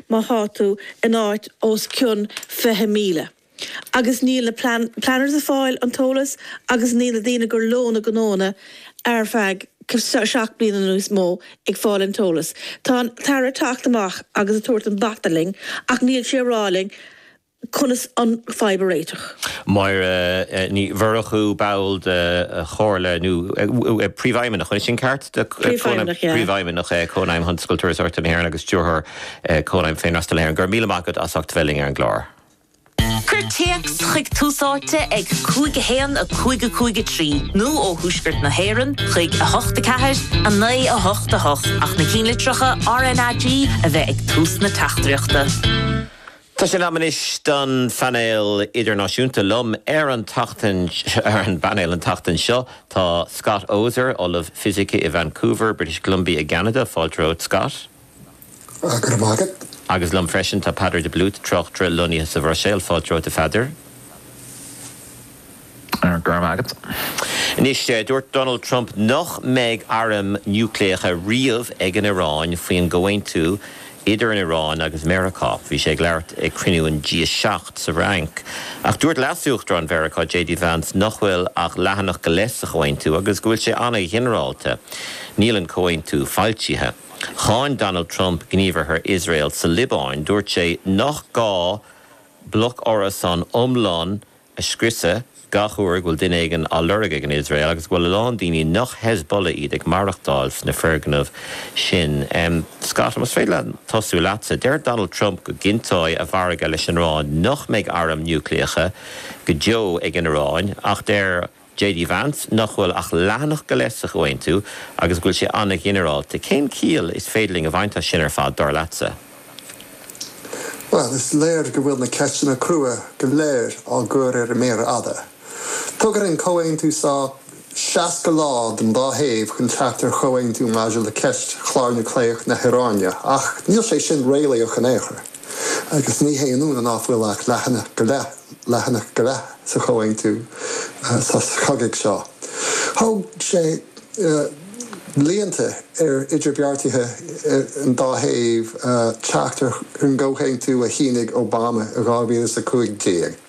má thá tú in áit os cionn fiche míle, agus níl na planners a' fáil an t-eolas agus níl na daoine gur leo na gnónna ar feadh seacht bliana nó níos mó ag fáil an t-eolas, tá an tAire 'teacht amach agus a' tabhairt an bata linn ach níl sé a' rá linn conas an fadhb a réiteach. Máire Ní Mhurchú, ball de chomhairle nó de phríomhfheidhmeannach, an sin ceart? Príomhfheidhmeannach, yeah. Príomhfheidhmeannach Chónaidhm Thionscal Turasóireachta na hÉireann agus Stiúrthóir Chónaidhm Féinfhreastail na hÉireann. Go raibh míle maith agat as ucht bheith linn ar an gclár. Cuir téacs chuig Tús Áite ag 5 1 5 5 3 nó ó Thuaisceart na hÉireann chuig 8 4 9 8 8 ach na cinnlitreacha RNAG a bheith ag tús na teachtaireachta. Tá sé in am anois don phainéal idirnáisiúnta liom ar an tseachtain. Ar an bpainéal an tseachtain seo tá Scott Oser, Ollamh Fisice i Vancouver, British Columbia i gCeanada, fáilte romhat Scott! Go raibh maith agat. Agus liom freisin tá Peadar de Blúit, tráchtaire lonnaithe sa Bhruiséil, fáilte romhat a Pheadair! Go raibh maith agat. Anois, dúirt Donald Trump nach mbeidh airm niúcléacha riamh ag an Iráin faoin gcomhaontú idir an Iráin agus Meiriceá. Bhí sé ag labhairt ag cruinniú an G7 sa Fhrainc. Ach dúirt leasuachtarán Mheiriceá, JD Vance, nach bhfuil ach leathanach go leith sa chomhaontú agus go bhfuil sé an-ghinearálta. Níl an comhaontú foilsithe. Cháin Donald Trump gníomhartha Iosrael sa Liobáin. Dúirt sé nach gá bloc árasán iomlán a scriosadh gach uair go bhfuil duine éigin á lorg ag an Iosrael agus go bhfuil a lán daoine nach Hezbollah iad ag maireachtáil sna foirgnimh sin. Scott, más féidir liom tosú leatsa. Deir Donald Trump go gcinnteoidh a mhargadh leis an Iráin nach mbeidh airm núicléacha go deo ag an Iráin ach deir JD Vance nach bhfuil ach leathanach go leith sa chomhaontú agus go bhfuil sé an-ghinearálta. Cén chiall is féidir linn a bhaint as sin ar fad, dar leatsa? Bhuel, is léir go bhfuil na ceisteanna crua go léir á gcur ar an méar fhada. Tugann an comhaontú so 60 lá don dá thaobh chun teacht ar chomhaontú maidir le ceist chlár núicléach na hIaráine ach níl sé sin réalaíoch in aon chor. agus ní haon ionadh ná fuil ach leathanach go leith, leathanach go leath, sa chomhaontú sos cogaidh seo. Thóg sé blianta ar idirbheartaithe an dá thaobh teacht ar an gcomhaontú a shínigh Obama i 2015.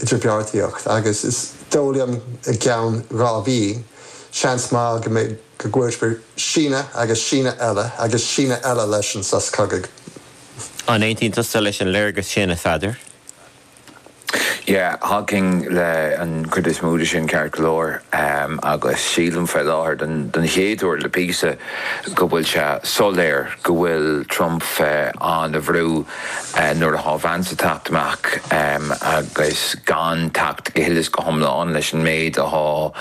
idirbheartaíocht agus is dóigh liom i gceann dhá mhí, seans maith go mbeidh, go gcuirfear síneadh agus síneadh eile agus síneadh eile leis an sos cogaidh. An aontaíonn tusa leis an léargas sin, a Pheadair? Yeah, thacóinn leis an chuid is mó de sin ceart go leor agus sílim faoi láthair don don chéad uair le píosa go bhfuil sé soiléir go bhfuil Trump faoi an-bhrú Nuair athá Vance a' teacht amach agus gan teacht go huile is go hiomlán leis an méid athá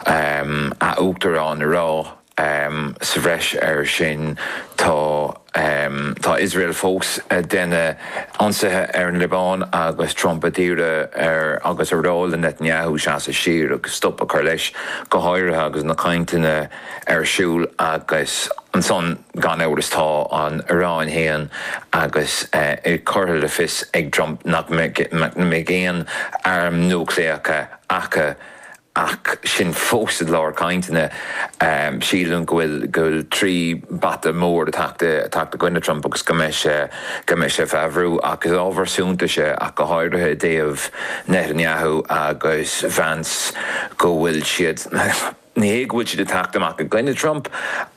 a' t-Uachtarán a rá, sa bhreis air sin, tá, tá Iosrael fós a' déanamh ionsaithe ar an Liobáin agus Trump ag iarraidh air agus a rá le Netanyahu seasamh siar agus stop a chur leis, go háirithe agus na cainteanna ar siúl agus ansan, Gan amhras tá an Iaráin féin agus é curtha in fios ag Trump nach mbeidh aon airm núicléacha acu ach sin fós i lár cainteanna. Sílim go bhfuil trí bhata mór ag teacht i gcoinne Trump agus go mbeidh sé ag feabhsú ach is ábhar suntais é ach go háirithe i dtaobh Netanyahu agus Vance go bhfuil siad, Ní hé go bhfuil siad ag teacht amach i gcoinne Trump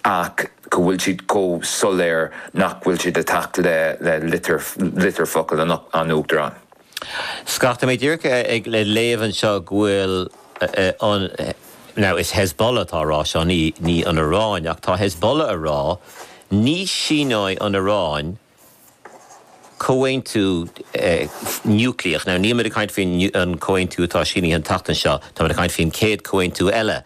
ach go bhfuil siad chomh soiléir nach bhfuil siad ag teacht le litir focal an Uachtaráin. Feicim díreach ag léamh anseo go bhfuil an, now is Hezbollah atá a rá seo, ní an Iaráin, ach tá Hezbollah a rá, ní síneoidh an Iaráin, Comhaontú núicléach. Now, níl muid ag caint faoin an comhaontú atá sínithe an tseachtain seo, tá muid ag caint faoin céad comhaontú eile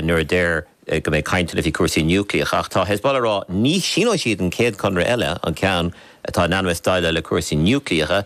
nuair a deir go mbeidh caint ann faoi chúrsaí núicléach. Ach tá Hezbollah ag rá ní shíneoidh siad an céad conradh eile, an ceann atá in ainm is déileáil le cúrsaí núicléacha.